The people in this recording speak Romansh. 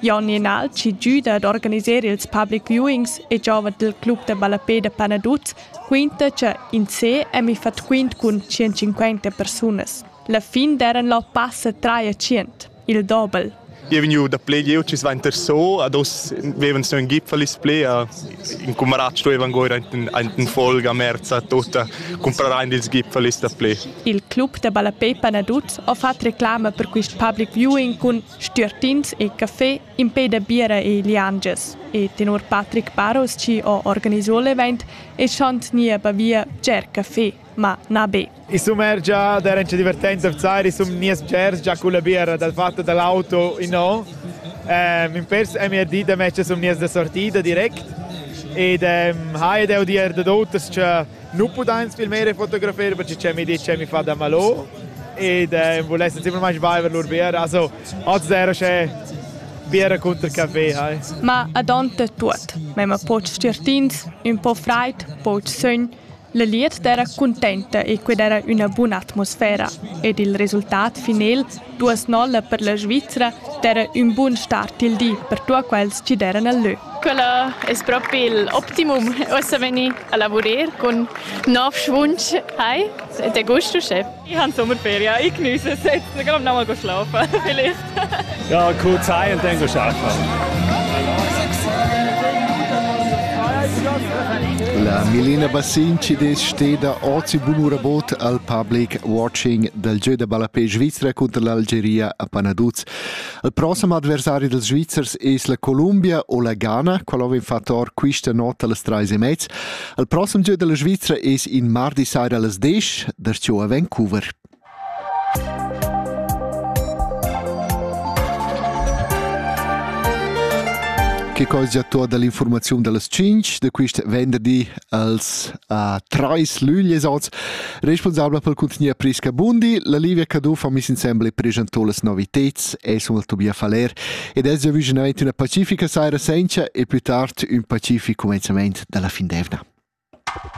Jon Jenalci giuda ad organiser ils public viewings e giova dil club da ballapé da Panaduz quinta che in se è mi fat quint cun 150 persunas. La fin d'eran la passa 300, il dobel. Io vegnu da play jeu ci svainter so ad os vevan so in gipfel is play a in cumarat stuevan goir ein folga a merza tota comprarein ils gipfel is da play. Il club da ballapé Panaduz ha fatto reclama per quist public viewing cun Stüertins e caffè impeda biera e liangias e tenor Patrick Baros chi ho organiso l'event eschan gnir bavia bger caffè, ma na be. I sumergia d'eran cha divertenza vzar, i sun gnias bgers già culla biera dal fat da l'auto innò. Ehm, in pers emi a di da mezcha sun gnias da sortida direct ed ehm, hai ed eu dir dad oters cha nu pudains filmare e fotografere perché c'è mi di c'è mi fa da malo ed eh, vulesse semplicemente viver lur bier also oz era c'è bier contro caffè hai ma adonte tuot ma poch certins un po fraid poch sogn La liet d'era contenta e qued era üna buna atmosfera ed il resultat final Duas nolla per la Svizra d'eira ün bun start il di per tuot quels chi d'eiran al lö. Quella es propi il optimum uossa vegnir a lavurer cun nov schwunsch. Hai, è te gusto, Chef? Ich habe Sommerferien. Ich genieße es jetzt. Ich glaube, nochmal schlafen vielleicht. Ja, kurz heim und dann arbeiten. La Milena Bassin ci des steda ozi bunura bot al public watching dal gieu da ballapè svizra cunter l'Algeria a Panaduz. Il prossem adversari dels Svizzers es la Columbia o la Ghana, qual ova infattor quista not a las trais e mez. Il prossem gieu della Svizra es in mardi saira las 10 darciò a Vancouver. Che cosa già tua dall'informazione delle 5 de quist venderdi als a trais lüglies oz, responsabla per contignuer Prisca Bundi. La Livia Caduff ha miss insembel per preschentò las noviteds e sulla Tobia Faler ed es già vicinament una pacifica saira senza e più tard un pacific commenzament dalla fin d'evna.